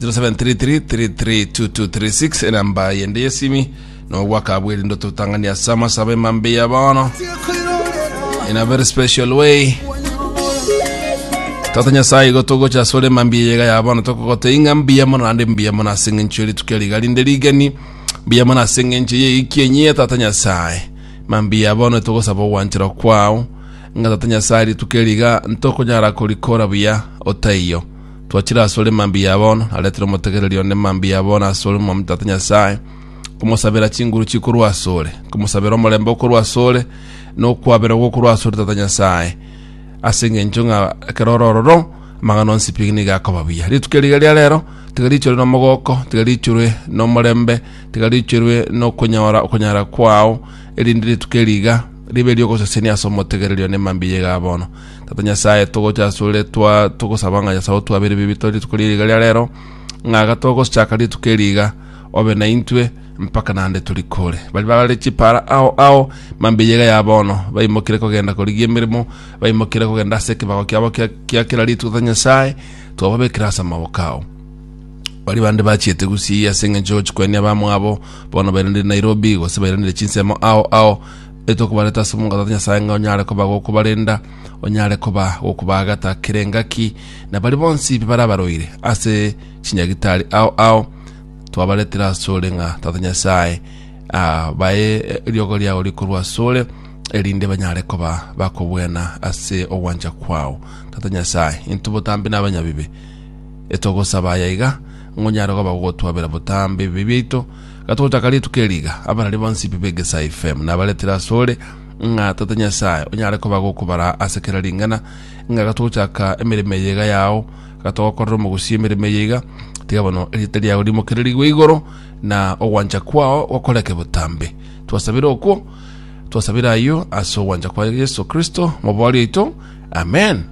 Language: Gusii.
0733332236 enamba yende yesimi nogwaka bwerendo totangani ase amasaba emambe ya bono in a very special way tata nyasaye igo togocha ase ore emambi eyega ya bono tokogote ing'a mbuya mono ande mbuya mono ase eng'encho eritukia riga rinde rigeni mbuya mono ase eng'encho ye iki enyie tata nyasaye mambi ya bono togosaba ogwanchera kwao ng'a tata nyasaye ritukia riga ntokonyara korikora buya otaiyo Twachire asore mambia ya bono, naretire omotegereri one mambia ya bono asore Omwami Tata Nyasae, komosabera chinguru chikorwa asore, komosabera omorembe okorwa asore, na okwaberwa gokorwa asore Tata Nyasae, ase engencho ng'a ekero orororo amang'ana onsi pi nigo akoba buya. Rituko riga ria rero tiga riichorwe nomogoko, tiga riichorwe nomorembe, tiga riichorwe nokonyora okonyara kwao, erinde rituko eri iga Ribe ri'ogosesenia ase omotegererio ne mambia iga bono. Tata Nyasae, togocha asore, twa, togosaba ng'a Nyasae otwabere bibi tore rituko ria riga ria rero, ng'a iga togochaka rituko eri iga, obe naintwe mpaka naende torikore. Bari bagare chipara ao ao, mambia iga ya bono, baimokire kogenda korigia emeremo, baimokire kogenda ase ekebago kiabo kia, kia kera rituko, Tata Nyasae, twababekire ase amaboko ao. Baria bande bachiete gusii ase engencho yochikwania abamwabo bono bairanire Nairobi gose bairanire chinsemo ao ao etokobareta ase omongo Tata Nyasaye ng'a onyare koba gokobarenda onyare koba gokobaagata kera engaki na bari bonsi barabaroire ase chinyagitari ao ao twabaretera asore ng'a Tata Nyasaye ah, bae eriogo riao rikorwa asore erinde banyare koba bakobwena ase ogwancha kwao Tata Nyasaye intobotambi na abanyabibe etogosaba aya iga, ngonyare koba gogotwabera botambe ebibe biaito, gatogochaka rituko eri iga, abarari bonsi bibe egesae FM nabaretire asore, ng'a Tata Nyasae onyare koba gokobara ase kera ring'ana, ng'a gatogochaka emeremo eye iga yao, gatogokorera omogusi emeremo eye iga, tiga bono erieta riao rimokererigwe igoro, na ogwancha kwao gokoreke botambe. Twasabire okwo, twasabire ayio ase ogwancha kwa Yeso Kristo, Omobori oito. Amen.